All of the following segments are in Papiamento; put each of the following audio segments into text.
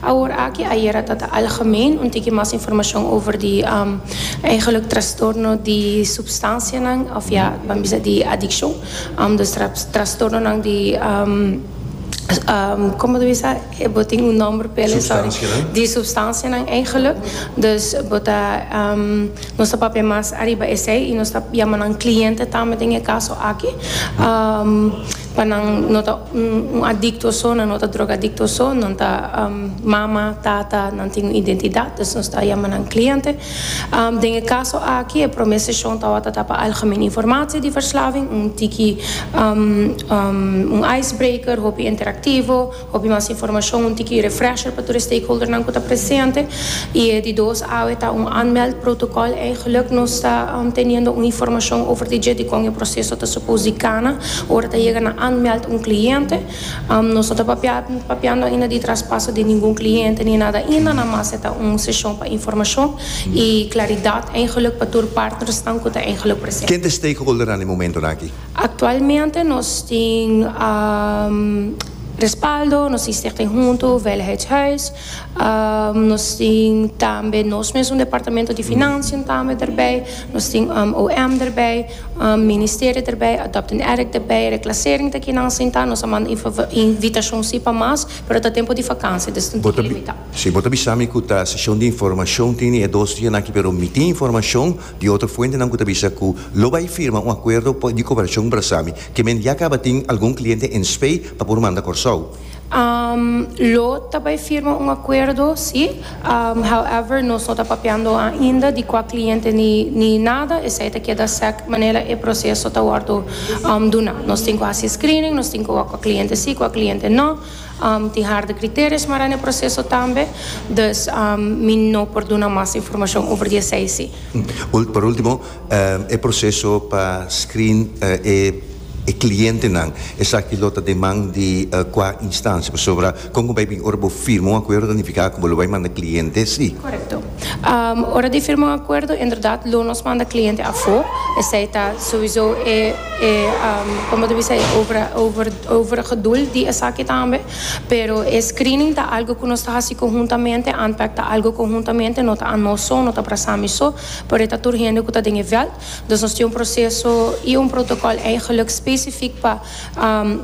Awor aki, ayera ta ta algemeen, un tiki mas informashon over di eigenlik trastorno di supstansianan of ya nan bisa di adikshon, dus trastornonan di, como ta bisa e bo tin un nomber pa elei sorry, di supstansianan eigenlik, dus bo ta nos ta papia mas ariba esei y nos ta yama nan cliente tambe den e caso aki. Pa nan no ta un adikto so, nan no ta drogadikto so, nan ta mama, tata, nan tin un identidat, dus nos ta yama nan kliente. Den e kaso aki e promé seshon tawata ta pa algemene informatie di verslaving, un tiki un icebreaker, hopi interaktivo. Hopi mas informashon, un tiki refresher pa tur e stakeholdernan ku ta presente, i e di dos awe ta un aanmeld protokòl. Eigenlik nos ta teniendo un informashon over di dje dikon e proseso ta supos di kana ora ta yega na aanmeld un kliente. Nos no ta papiando ainda di traspaso di ningun kliente ni nada ainda, na mas e ta un seshon pa informashon i klaridat eigenlik pa tur partnersnan ku ta eigenlik presente. Ken ta e stakeholdernan den momentonan aki? Aktualmente nos tin respaldo, nos tin Stichting Huntu Veiligheidshuis, nos tin tambe nos mes un departamento di Financiën tambe derbij, nos tin OM derbij, Ministerio derbij, Adopt an Addict derbij, Reclassering ta kinan sinta, nos a manda invitashon si pa mas, pero ta tempu di vakansia, dus tin tempu limitá. Si bo ta bisa mi ku ta seshon di informashon, tin e dos dianan aki, pero mi tin informashon. Di otro fuentenan cu ta bisa cu lo bay firma un acuerdo pa di cooperacion Brasami, ke men ya caba tin algun cliente en Spey pa por manda Corsou. Lo ta bay firma un acuerdo, si. However, nos no ta papiando ainda di cua cliente ni nada, esey ta keda sec manera e proceso ta wordo duna. Nos tin cu haci screening, nos tin cu wak cua cliente si, cua cliente no. Tin harde kriterio smará n'e proseso tambe, dus mi no por duna mas informashon over di esei si. Pa ultimo, e proseso pa screen e klientenan, esaki lo ta den man di kua instansia? Pasobra kon ku bai bin ora bo firma un akuerdo ta nifiká ku bo lo bai manda kliente si? Korekto. Ora di firma un akuerdo inderdat lo nos manda kliente afó, esei ta souizo e, e, kon bo ta bisa e over, over. over geduld di esaki tambe, pero e screening ta algo cu nos ta haci conhuntamente, Antpac ta algo conhuntamente, no ta anos so, no ta Brasami so, pero e ta tur hende cu ta den e veld, dus nos tin un proceso y un protocol eigenlijk specific pa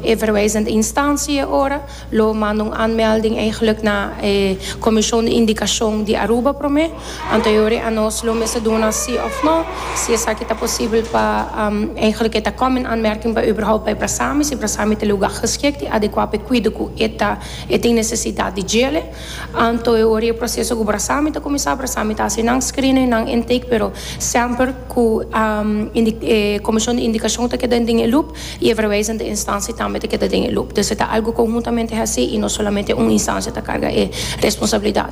e verwijzende instantie e ora, lo manda un aanmelding eigenlijk na e Comision di Indicacion di Aruba prome. Anteriori anos lo mester duna si of no si esaki ta posibel pa Eigenlijk e ta common aanmerking pa überhaupt pa e brasami si brasami ta lugar geschikt i adequa pa e cuido cu e ta e tin necesidad di djele. Antoeori e proceso cu brasami ta cuminsa brasami ta haci nan screener i nan intake pero semper cu e comision di indicacion ta keda den e loop i e verwijzende instantie tambe ta keda den e loop. Dus e ta algo conhuntamente haci i no solamente un instancia ta carga e responsabilidad.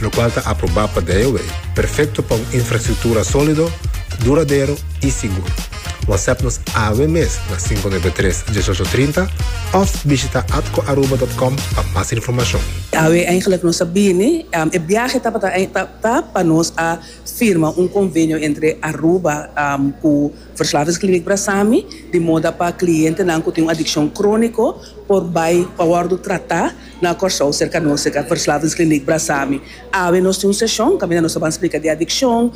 lokual ta aprobá pa DIOA, perfekto pa un infrastruktura sólido, duradero i sigur. Whatsapp nos awe mes na sinku nuebe tres, dieshocho trinta òf bishita atcoaruba dòt com pa mas informashon. Awe eigenlik nos a bini, e biahe tabata ta pa nos a firma un konvenio entre Aruba ku Verslavingskliniek Brasami di moda pa klientenan ku tin un adikshon króniko por bai pa wòrdu tratá Na Kòrsou, serka nos, serka Verslavingskliniek Brasami, awe nos tin un seshon kaminda nos ta ban splika di adikshon,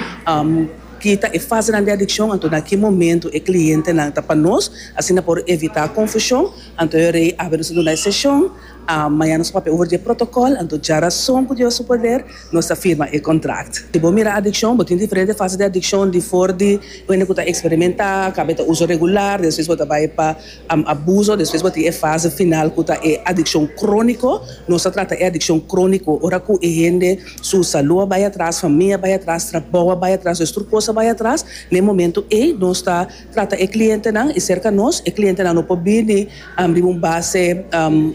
ki ta e fasenan di adikshon, anto na ki momentu e klientenan ta pa nos, asina por evitá konfushon. Anto e rei awe nos ta duna e seshon. Mañana nos ta papia over di e protokòl, anto djarason ku Dios su poder nos ta firma e kontrakt. Si bo mira adikshon, bo tin diferente fase di adikshon, di for di hende ku ta eksperimentá, kaminda ta uso regular, despues bo ta bai pa. Abuso, Despues bo tin e fase final ku ta e adikshon króniko. Nos a trata e adikshon króniko ora ku e hende su salú a bai atras, famia a bai atras, trabou a bai atras, es tur kos a bai atras. Na e momentu ei nos ta trata e klientenan i serka nos. E klientenan no por bini riba un base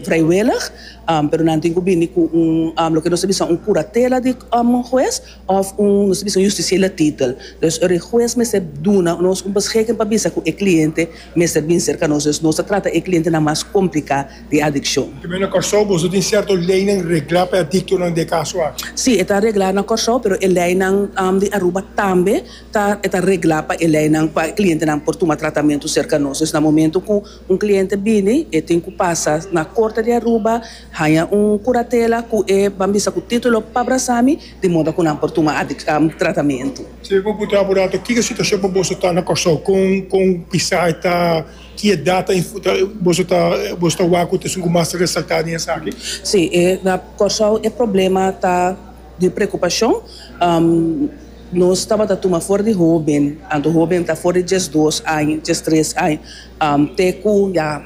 vrijwillig, pero nan tin ku bini ku un loke nos ta bisa un kuratela di un hues. Òf un, nos ta bisa un yustisiela titel. Pues ora e hues mester duna nos un beschiking pa bisa ku e kliente mester bin serka nos, nos ta trata e klientenan mas kompliká di adikshon. Tambe na Kòrsou boso tin sierto leinan reglá pa e adiktonan di e kaso aki? Sí, e ta reglá na Kòrsou, pero e leinan di Aruba tambe ta reglá pa e leinan, pa e klientenan por tuma tratamentu serka nos. Na momentu ku Un cliente bini e tin cu pasa na Corte di Aruba haña un curatela cu e ban bisa cu titulo pa brasami di moda cu nan por tuma tratamento. Si bo putea apura ta kico situacion pa boso ta na Corsou, con pisa e ta, ki edad ta boso ta boso ta wak cu ta esun cu mas ta resalta den esaki? Si, na Corsou e problema ta di preocupacion. Nos tabata tuma for di hóben, anto hóben ta for di diesdos aña, diestres aña, te ku ya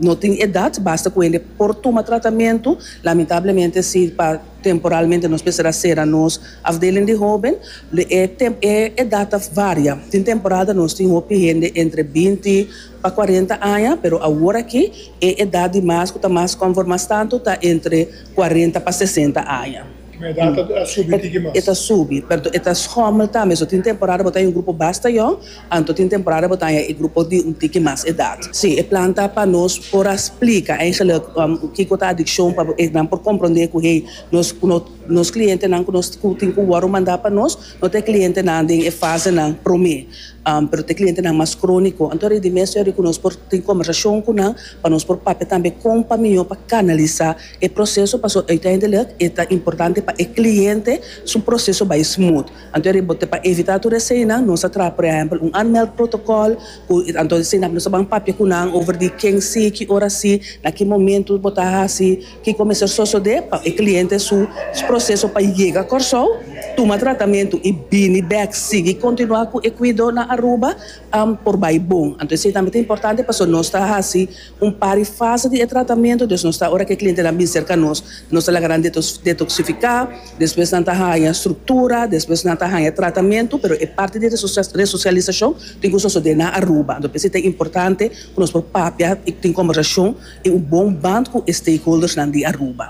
no tin edat, basta ku hende por tuma tratamentu. Lamentablemente si pa temporalmente nos mester sera nos afdeling di hóben, e edat ta varia. Tin temporada nos tin hopi hende entre binti pa kuarenta aña, pero aworakí e edat di mas ku ta mas kòmfort mas tantu ta entre kuarenta pa sesenta aña. E ta subi, pero e ta schommel tambe. So tin temporada bo ta haña un grupo basta yòn, anto tin temporada bo ta haña e grupo di un tiki mas edat. Sí, e plan ta pa nos por a splika eigenlijk kiko ta adiccion pa e nan por comprende cu hey, nos cu nos clientenan cu nos tin cu wòrdu mandá pa nos no ta e clientenan den e fasenan promé, pero ta e clientenan mas crónico. Anto riba di mes yòri cu nos por tin conversacion cu nan pa nos por papia tambe con pa mihó pa canalisá. E proseso pa su uiteindelik e ta importante pa e kliente su proseso bai smooth. Anto e riba pa evitá tur eseinan nos a traha por ehèmpel un aanmeld protokòl ku anto esei nan nos a ban papia ku nan over di ken si, ki ora si, na ki momentu bo ta hasi, kiko mester sosodé pa e kliente su proseso pa yega Kòrsou, tuma tratamentu i bini bèk sigui kontinuá ku e kuido na Aruba por bai bon. Anto esei tambe ta importante pasobra nos ta hasi. Un par di fase di e tratamentu, dus nos ta ora ku e klientenan bin serka nos, nos ta laga nan detoksifiká, despues nan ta haña struktura, despues nan ta haña tratamentu, pero e parti di resosialisashon tin ku sosodé na Aruba, anto p'esei ta importante ku nos por papia i tin kòmbersashon i un bon band ku e stakeholdersnan di Aruba.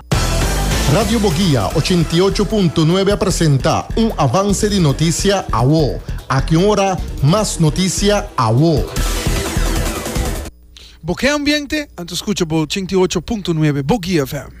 Radio Boguia ochenta i ocho punto nuebe a presenta un avanse di notisia awo. Aki un ora mas notisia awo. Bo ke ambiente? Anto skucha bo ochenta i ocho punto nuebe, Boguia FM.